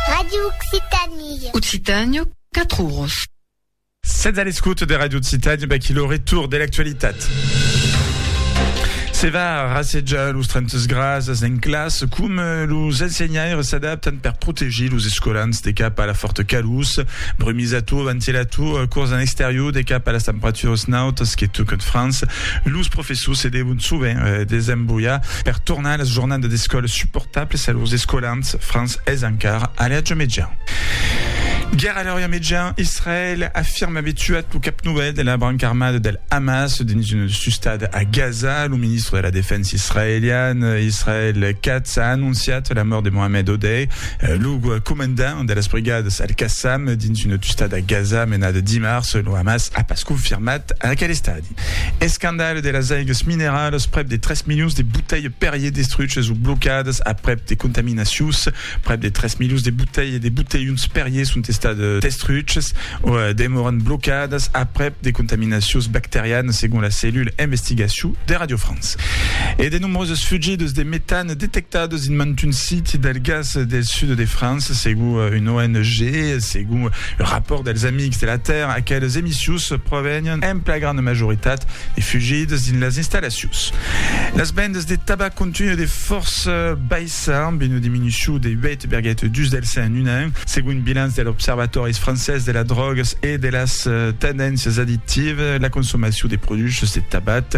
Radio Occitanie. Occitanie, 4 oros. Sètz a l'escoute de Radio Occitanie, ben, qui le retour de l'actualitat. Se va rassejar los 30 grasses en classe, com eh, los ensenhaires s'adaptan per protegir los escolans de cap a la forta calús, brumisator, ventilator, eh, curs en exterior de cap a las temperaturas nautas que toquen França, los professors Sucedèron sovent de s'embroiar per tornar a las jornadas d'escòla suportables a lors escolans francs es encara a l'atge mejan. Guèrra a l'Orient Mejan, Israèl afirma aver tuat lo cap novèl de la branca armada del Hamas dins una sustada a Gaza. Lo ministre de la Defensa israelian, Israel Katz, a anonciat la mòrt de Mohamed Odeh, lo comandant de las brigadas Al-Qassam dins una tustada a Gaza menada dimars. Lo Hamas a pas confirmat aquel estadi. Escandalh de las aigas mineralas, prèp de 3 milions de botelhs Perrier destruches o blocadas aprèp de contaminacions. Prèp de 3 milions de botelhs de botelhons Perrier son estats destruches o demòran blocadas aprèp de contaminacions bacterianas, segon la cellula Investigacion de Radio France. E de nombroses fugidas de metan Detectat dins mantun siti del gas del sud de França, segon un ONG e segon un rapòrt dels Amics de la Tèrra, aqueles emissius provenián en pla granda majoritat de fugidas dins las installacions. Las vendas de tabac continuen de fòrça baissar, amb una diminucion de 8,2 del cent en un an, segon un bilanç de l'Observatòris francés de las drògas e de las tendéncias addictivas, la consomacion de produchs de tabac